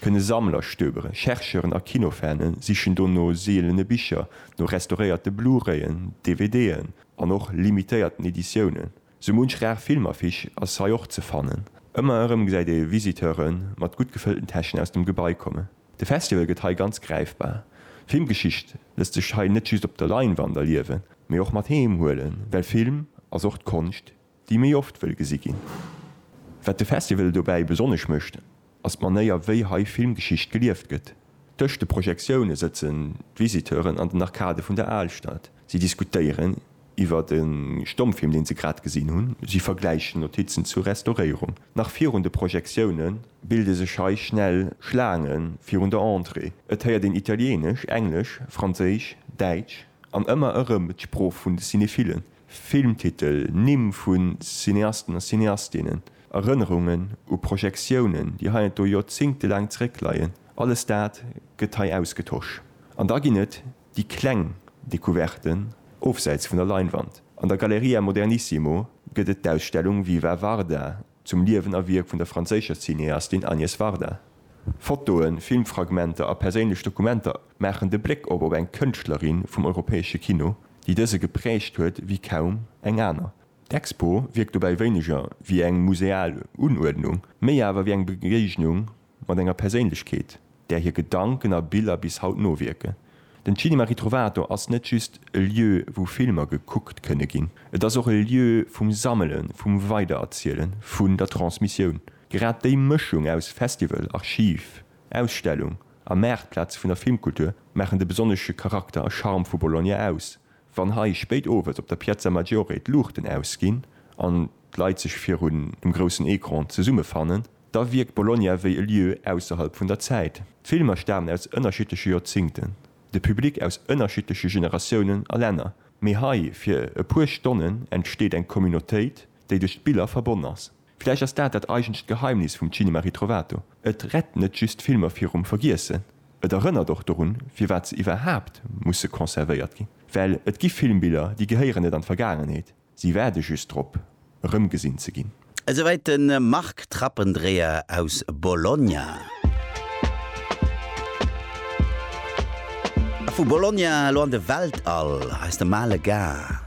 kënne Sammler stöberen. Chercheuren a Kinofane sichen do no seelene Bicher, no restauréierte Blu-rayen, DVDen an och limitéierten Editiounen. Sou munch rar Filmaffiche ass hei och ze fannen. Ëmmer erëm gesäit ee Visiteure mat gutt gefëllten Täschen aus dem Gebai kommen. De Festival gëtt hei ganz gräifbar. Filmgeschicht lësst sech hei net just op der Leinwand erliewen, mee och mat heem huelen, well Film ass och d'Konscht, déi méi oft wëll gesi ginn. Wat de Festival dobäi besonnesch mécht, ass d'Manéier wéi hei Filmgeschicht gelieft gëtt. Tëscht de Projektioune sëtzen d'Visiteuren an den Arkade vun der Alstad. Si diskutéieren iwwer e Stommfilm, deen se grad gesinn hunn. Si vergläichen Notizen zur Restauréierung. Nach virun de Projektioune bilde sech hei schnell Schlaange virun der Entrée. Et héiert een Italieenesch, Englesch, Franséisch, Däitsch an ëmmer erëm d'Sprooch vun de Cinephillen. Filmtitel, Nimm vu Cineasten a Cineastinnen, Erënnerungen u Projektiounen, déi heiansdo joerzéngtelaang zeréckleien, alles dat gëtt hei ausgetosch. An da ginn et déi kleng Decouverten ofsäits vun der Leinwand. An der Galleria Modernissimo gëtt et d'Ausstellung Viva Varda, Zum Liewen a Wierk vun der franséischer Cineastin Agnès Varda. Fotoen, Filmfragmenter a perséinlech Dokumenter maachen de Bléck op op eng Kënschtlerin vum europäesche Kino, déi dëse geprägt huet wéi kaum eng aner. D'Expo wierkt dobäi wéineger wéi eng museal Unuerdnung, méi awer wéi eng Begéignung mat enger Perséinlechkeet, där hir Gedanken a Biller bis haut nowierken. Den Cinema Ritrovato ass net just e Lieu, wou Filmer gekuckt kënne ginn. Et ass och e Lieu vum Sammelen, vum Weidererzielen, vun der Transmissioun. Grad déi Mëschung aus Festival, Archiv, Ausstellung a Maartplaz vun der Filmkultur maachen de besonnesche Charakter a Charme vu Bologna aus, Wann hei spéit owes op der Piazza Maggiore d'Luuchten ausginn an d'Leit sech virun dem groussen Ecran zesummefannen, da wierkt Bologna wéi e Lieu ausserhalb vun der Zäit. D'Filmer stamen aus ënnerschiddleche Joerzingten, de Public aus ënnerschiddleche Generatiounen a Länner, mee hei fir e puer Stonnen entsteet eng Communautéit, déi duerch d'Biller verbonn ass. Villäicht ass dat dat eigentlecht Geheimnis vum Cinema Ritrovato, et rett net just Filmer virum Vergiessen, et erënnert och dorun, firwat se iwwerhaapt musse conservéiert ginn. Well et gi Filmbiller, déi gehéieren net an d'Vergaangenheet, si waarde just drop, erëmgesinn ze ginn. Esouwäit de Marc Trappendreher aus Bologna. A vu Bologna elo an de Weltall, eis de Male Gars.